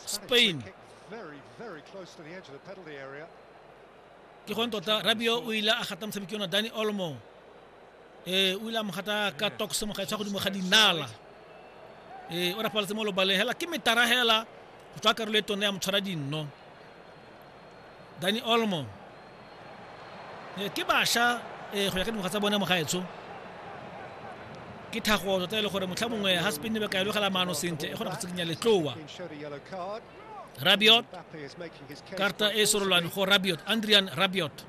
spain ke gone tota rabio o ile a gata motshameki ona dani olmo ee o ile a mo gata ka tokso mo gaetswa godimo ga dinala ee o rapaletse mo lobaleng hela ke metara hela go tswa karolo e tone ya motshwara dinno Dani Olmo. Eh, ke basha eh, go ya ka dingwaga tsa bone mogaetsho ke thago tota e le gore motlha mongwe ga spinne ba ka elogela maano sentle e kgona go tsikinya letloa rabiot karta e sorolwane go rabiot andrian rabiot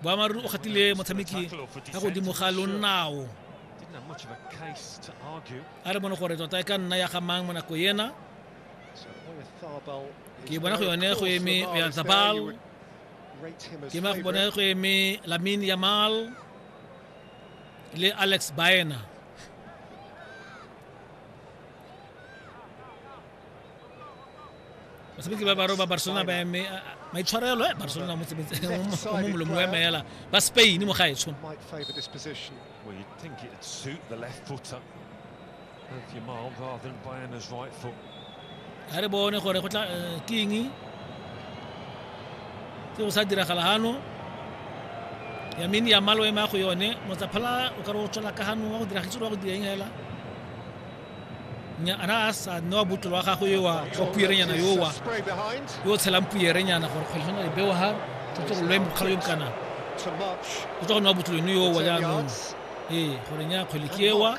boamaruri o kgathile motshameki ka godimo ga lonao a re bone gore tota e ka nna ya gamang mo nako ena ke bona go yone go eme oyazabal ke ma go bona go eme lamin yamal le alex baena basebetsi ba baro ba barcelona ba eme maitshwarelo e barcelona mo molomo wa emeela ba spain mo gaetsho ga re bone gore go tla eh, ke eng se go sa diragala gano yamini ya malo ema go yone motsaphala o ka re o tswela ka gano wa go dira gitse wa go dira eng hela ana a sa nne wa botolo wa gagwe yo wa wa puyerenyana yo wa yo o tshelang puyerenyana gore kgwele gona lebeo ga totse go lwe mokgalo yo mokana o tswa go nne wa botolo eno yo wa jaanong ee gore nya kgwele ke ewa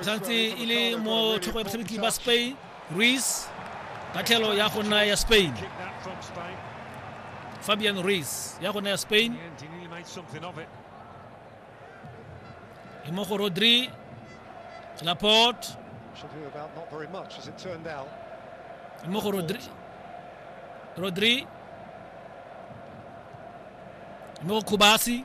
santse e le mo thoko ya batshameki ba spain ruiz ka tlhelo ya go nna ya spain fabian ruiz ya go nna ya spain e mo go rodri laporte e mo go rodri rodri e mo go khubasi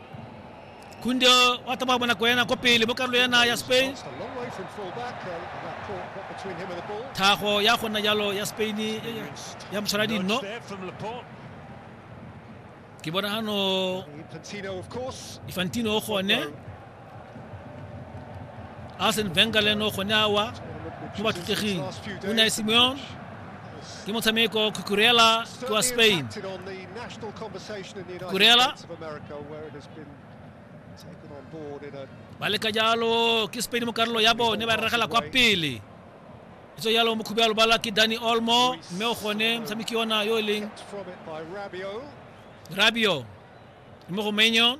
Kundio wa tsamaya mo nako yana ko pele mo karolo yana ya Spain. Thago ya go nna jalo ya Spain ya motshwara dinno. Ke bona hano Infantino o gone. Arsene Wenger le eno gone awa mo bathuteging. O ne Simeone ke motshameko cucurella kwa spain cucurella ba leka jalo ke spain mo karolo ya bone ba regela kwa pele e tso jalo mokhubi ya lobala ke danny olmo mme o gone motshameki yona yo e leng rabio mo go menyo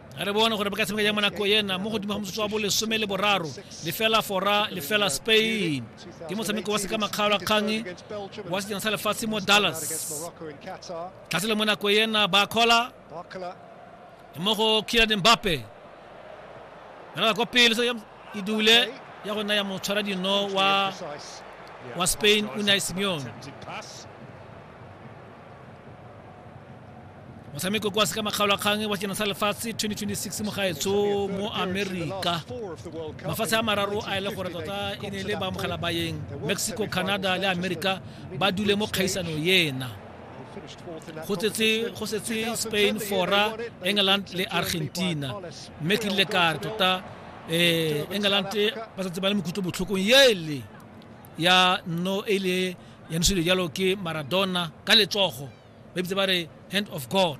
re bone gore ba ka tshameka jang mo nako ena mo godimo ga motsotso wa bolesome le boraro lefela fora lefela spain ke motshameko wa sekamakgaolo kgang wa sejana sa lefatshe mo dallas tlase le mo nako ena ba kgola mo go kiran mbape rela kwa pele se e dule ya go nna ya motshwara dino wa wa spain unai simeon motshameko kwa se ka makgaolakgang wa sejana sa lefatshe 2026 mo gaetsho mo amerika mafatshe a mararo a ele gore tota e ne le baamogela bayeng mexico canada le amerika ba dule mo kgaisano ena go tsetse go setse spain fora england le argentina mme ke rile kare tota um england ba setse ba le mokutlo botlhokong ele ya no e le ya ntsho jalo ke maradona ka letsogo ba ebitse ba re hand of god